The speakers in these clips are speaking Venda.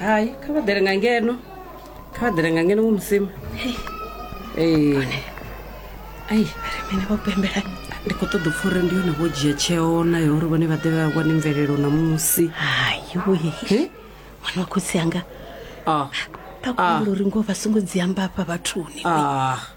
hai kha vha ḓele nga ngeno kha vha ḓele nga ngeno wo musima ee ai ari mini vho pembela ndi khou ṱoḓa upfa uri ndi yone vho dzhia tsheo nayo uri vhone vha ḓe vha wane mvelelo ṋamusi hayiwe wana wa khotsi anga ah vha kumbula uri ngoho vha songo dzi amba afha vhathuni ah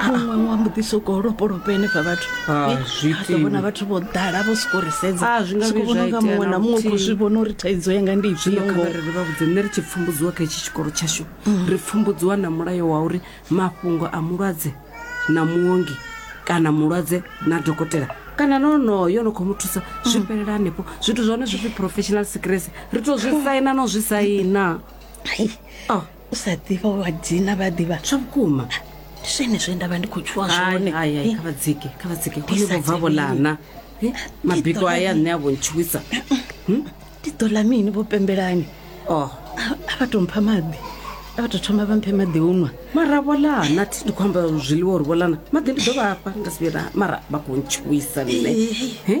muṅwe wa mbo ḓi sokou lopolopa henefha vhathu Ah, Eh, zwi a ḓo vhona itiwi. vhathu vho ḓala vho sokou ri sedza Ah, zwi nga Sokou vhuya vhona zwa unga itea muṅwe na na muṅwe u khou luthihi. zwi vhona uri thaidzo yanga ndi zwino ifhio kha ngoho vha ri ri vha vhudze nṋe ri tshi pfumbudziwa kha itshi tshikolo tshashu ri pfumbudziwa na mulayo wa uri mafhungo a mulwadze na muongi kana mulwadze na dokotela kana na onoyo no khou mu thusa zwi fhelela hanefho zwithu zwa hone zwi pfi professional secrecy ri to zwi saina no zwi saina Ai, Oh. u sa ḓivha wa dzina vha ḓivha zwa vhukuma ndi zwene zwe nda vha ndi khou tshuwa zwone Eh, kha vha dzike kha vha dzike Ndi hoyo sa vho bva vho dzivheli. lana Eh, Eh, mabiko ḓo aya ḽa nṋe a vho ntshuwisa ndi ḓo ḽa mini vho pembelani o a a vha tou mpha maḓi a vha tou thoma vha mphe maḓi u nwa mara vho lana thi ndi khou amba zwiḽiwa uri vho lana maḓi ndi ḓo vhafha nda si vhuyela mara vha khou ntshuwisa nṋe Eh, Eh?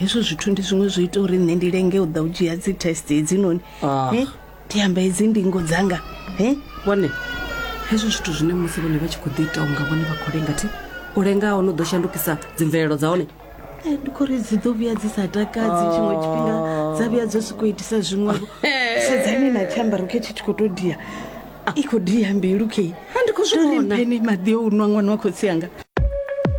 hezwo zwithu ndi zwiṅwe zwo ita uri nṋe ndi lenge u ḓa u dzhia dzi test hedzinoni Ah. Eh, ndi amba hedzi ndingo dzanga Eh, vhone hezwo zwithu zwine musi vhone vha tshi khou ḓi ita unga vhone vha khou lenga thi u lenga hone u ḓo shandukisa dzimvelelo dza hone eh, ndi khori dzi ḓo vhuya dzi sa takadzi tshiṅwe tshifhinga dza vhuya dzo sokou itisa zwiṅwevho sedzani na tshiambaro khe tshi tshi khou tou dia i khou dia mbilu khe Ha, ndi khou zwi vhona. mpene maḓi o u nwa ṅwana wa khotsi anga